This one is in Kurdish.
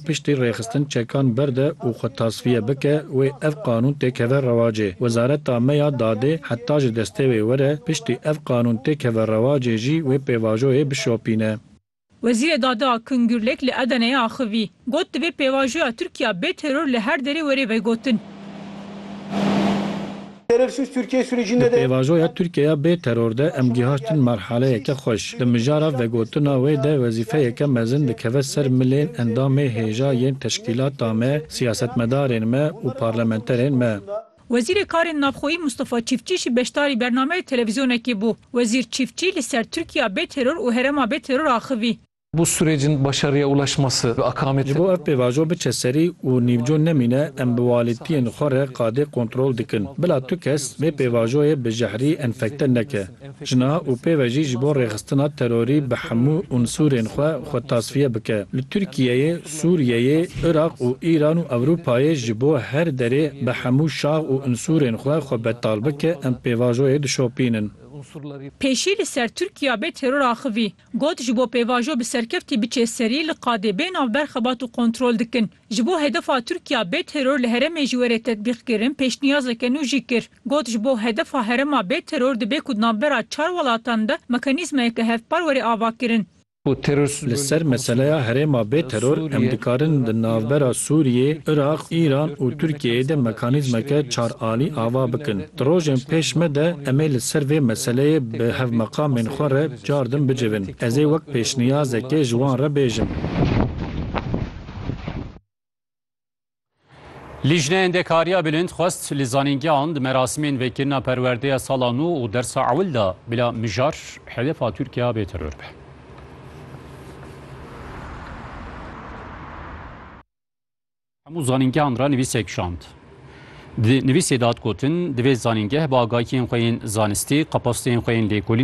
Piştî rêxistin çekan berde û xwe tasfiye bike wê ev qanûn tê keve rewacê. Wezareta me ya dadê heta ji destê wê were piştî ev qanûn tê keve rewacê jî wê pêvajoyê bişopîne. Wezîrê Dadê Akın Gürlek li Edeneyê axivî, got divê pêvajoya Tirkiya bê teror li her derê were vegotin. Di pêvajoya Tirkiyeya bê teror de em gihiştin merhaleyeke xweş. Di mijara vegotina wê de wezîfeyeke mezin dikeve ser milên endamê hêja yên teşkîlata me, siyasetmedarên me û parlamenterên me. Wezîrê Karên Navxweyî Mustafa Çîftçî jî beşdarî bernameyê televîzyonekê bû. Wezîr Çîftçî li ser Tirkiyeya bê teror û herema bê teror axivî. Bu sûrecin başariye ulaşması ve akameti. Ji bo ev pêvajo biçe serî û nîvco nemîne em bi walîtiyên xwe re qadê kontrol dikin. Bila tu kes vê pêvajoyê bi jehrî enfekte neke. Ji niha û pêve jî ji bo rêxistina terorî bi hemû unsûrên xwe xwe tasfiye bike. Li Tirkiyeyê, Sûriyeyê, Iraq û Îran û Ewropayê ji bo her derê bi hemû şax û unsûrên xwe xwe betal bike em pêvajoyê dişopînin. Pêşî li ser Tirkiya bê teror axivî. Got, Ji bo pêvajo bi serkevtî biçê serî li qadê bê navber xebat û kontrol dikin. Ji bo hedefa Tirkiya bê teror li heremê ji werê tetbîqkirin pêşniyazeke nû jî kir. Got, Ji bo hedefa herema bê teror dibê ku di navbera çar welatan de mekanîzmayeke hevpar were avakirin. Li ser meseleya herêma bê teror em dikarin di navbera Sûriyê, Iraq, Îran û Tirkiyeyê de mekanîzmeke çar alî ava bikin. Di rojên pêş me de em ê li ser vê meseleyê bi hevmeqamên xwe re Çar din bicivin. Ez ê wek pêşniyazekê ji wan re bêjim. Lîjneya Endekariya Bilind xwest li zanîngehan di merasimên vekirina perwerdeya sala nû û dersa ewil de bila mijar hedefa Tirkiya bê teror be. Hemû zanîngehan re nivîsek şand. Di nivîsê de hat gotin, divê zanîngeh bi agahiyên xwe yên zanistî, kapasiteyên xwe yên lêkolîn,